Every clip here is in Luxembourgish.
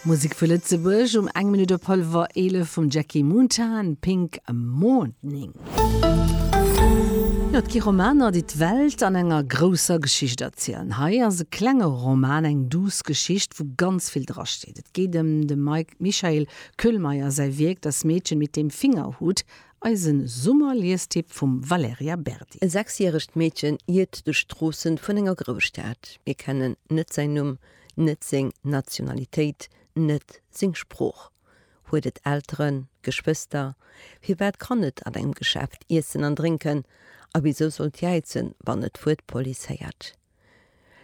Musek vu Lëtzebuerg um eng Minutt op hallwer 11 vum Jackie Moontan, Pink Morning. Jo, et gi Romaner, déi d'Welt an enger grousser Geschicht erzielen. Hei ass e klenge Roman, eng duuss Geschicht, wou ganz vill dra steet. Et geet ëm dem Michael Köhlmeier säi Wierk Das Mädchen mit dem Fingerhut Eisen Summer-Liestipp vum Valerija Berdi. E sechsjäregt Meedchen iert duerch d'Stroossen vun enger Grousstad. Mir kennen net säin Numm, net seng Nationalitéit, net seng Sprooch. Huet et Elteren, Geschwëster? Firwat kann et an engem Geschäft iessen an drénken, a wisou sollt jäizen, wann et d'Wuert Police héiert?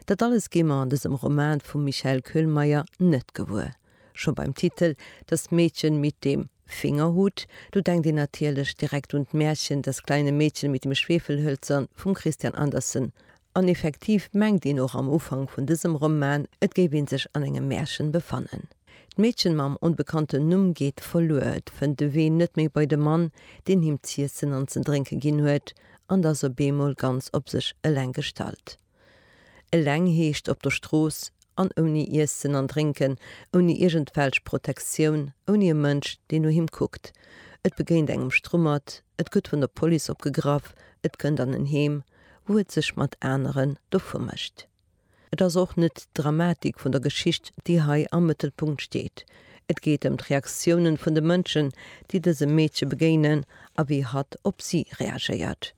Dat alles gi mer an dësem Roman vum Michael Köhlmeier net gewuer. Scho beim Titel Das Mädchen mit dem Fingerhut, do denkt een natierlech direkt un d'Märchen Das kleine Mädchen mit dem Schwefelhölzern vum Christian Andersen an effektiv mengt een och am Ufank vun dësem Roman, et géif ee sech an engem Märchen befannen. D'Mädchen mam onbekannten Numm geet verluer, et fënnt de Wee net méi bei de Mann, deen him z'iessen an ze drénke ginn huet, an d'ass op eemol ganz op sech eleng gestallt. Eleng heescht op der Strooss an ouni Iessen an Drénken, ouni iergendwelch Protektioun, ouni e Mënsch, deen no him kuckt. Et begéint engem Strummert, et gëtt vun der Police opgegraff, et kënnt an en Heem, wou et sech mat aneren dovu mécht. Et ass och net d'Dramatik vun der Geschicht, déi hei am Mëttelpunkt steet. Et geet ëm d'Reaktiounen vun de Mënschen, déi dësem Meedche begéinen a wéi hatt op si reagéiert.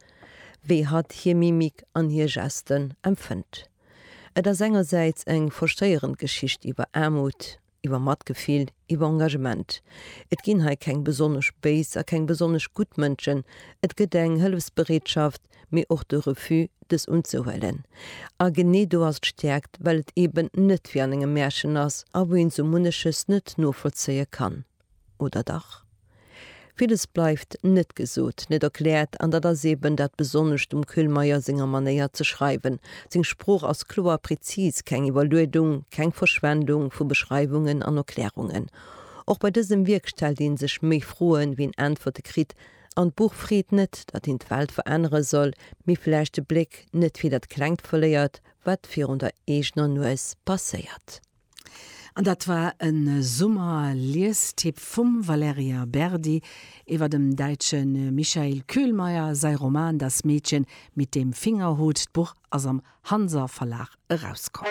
Wéi hatt hir Mimik an hir Gesten empfënnt. Et ass engersäits eng frustréierend Geschicht iwwer Aarmut, iwwer Matgefill, iwwer Engagement. Et ginn hei keng besonnesch béis a keng besonnesch gutt Mënschen, et gëtt eng Hëllefsbereetschaft, mee och de Refus, dës unzehuelen. A genee do ass d'Stäerkt, well et eeben net wéi an engem Märchen ass a wou een sou munneches net novollzéie kann. Oder dach? Villes bleift net gesot, net erkläert, an dat ass eben dat Besonnescht um Kühlmeier senger Manéier ze schreiwen. Seng Sprooch ass kloer, prezis, keng Iwwerluedung, keng Verschwendung vu Beschreiwungen an Erklärungen. Och bei dësem Wierk stellt ee sech méi Froen, wéi en Äntwerte kritt, an d'Buch freet net, datt een d'Welt verännere soll, mee vläicht de Bléck net fir dat Klengt verléiert, wat virun der eegener Nues passéiert. An dat war e Summer-Liestipp vum Valerija Berdi iwwer dem däitsche Michael Kühlmeier säi Roman Das Mädchen mit dem Fingerhut. D'Buch ass am Hanser Verlag erauskomm.